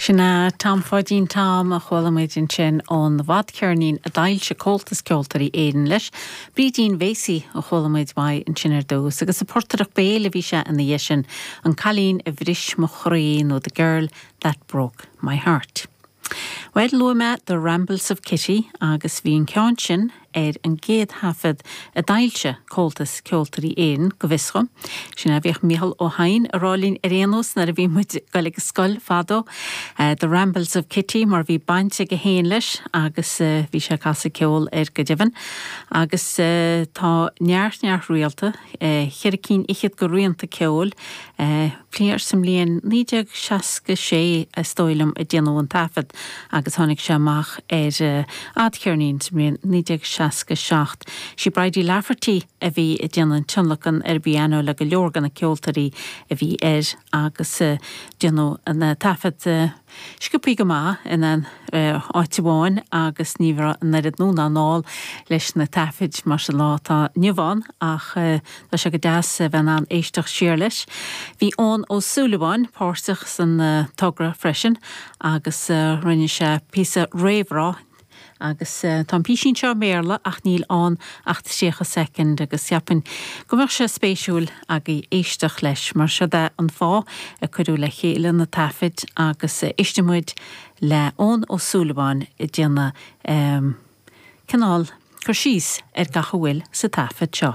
Sin é Tom Pháidín Tom a chuala muid ansin ón bhfadcheirnín a d'fhoilsigh Comhaltas Ceoltóirí Éireann leis. Brídín Bhéasaigh a chuala muid uaidh ansin ar dtús agus a portaireacht béil a bhí sé ina dhiaidh sin, An Cailín a Bhris mo Chroí nó The Girl that Broke my Heart. Bhuel, luaigh mé The Rambles of Kitty agus bhí an ceann sin ar an gcéad thaifead a d'fhoilsigh Comhaltas Ceoltóirí Éireann, go bhfios dhom. Sin é a bhíodh Micheál Ó hEidhin a rá linn ar aon nós nuair a bhí muid ag dul ag scoil fadó. The Rambles of Kitty mar bhí baint aige féin leis agus bhí sé ag casadh ceoil air go deimhin. Agus tá neart, neart rianta, cheithre cinn fhichead de rianta ceoil. Cliar sa mbliain 1966, is dóigh liom, a déanadh an taifead agus tháinig sé amach ar fhadcheirnín sa mbliain 1967. Sí Bridie Lafferty a bhí ag déanamh an tionlacan ar an bpianó le go leor de na ceoltóirí a bhí air agus déanadh na taifead Sciobtha go maith in aon áit amháin agus ní raibh an oiread útamáil leis na taifid mar sa lá atá inniu ann ach tá sé go deas a bheith in ann éisteacht siar leis. Bhí Eoin Ó Súilleabháin páirteach san togra freisin agus rinne sé píosa réamhrá Agus tá an písín seo i mBéarla ach níl ann ach 30 soicind agus cheapfainn go mbeadh sé spéisiúil agaibh éisteacht leis mar siod é an fáth a cuireadh le chéile na taifid agus éistfidh muid le Eoin Ó Súilleabháin ag déanamh cineál cur síos ar gach a bhfuil sa taifead seo.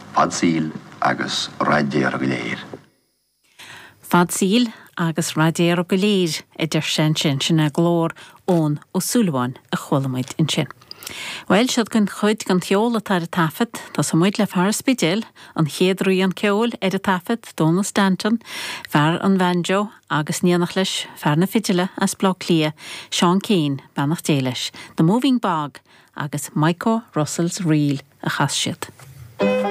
Fadsaoil agus raidéar go léir. Fadsaoil agus raidéar go léir, a deir sé ansin, sin é glór Eoin Ó Súilleabháin a chuala muid ansin. Bhuel, siod anois cuid den cheol atá ar an taifead. Tosóidh muid le fear an Spidéil, an chéad rian ceoil ar an taifead, Dónal Standún, fear an bhanjo agus in éineacht leis, fear na fidile as Baile Átha Cliath, Seán Keane, beannacht Dé leis. The Moving Bog agus Micho Russell's Reel a chas siad.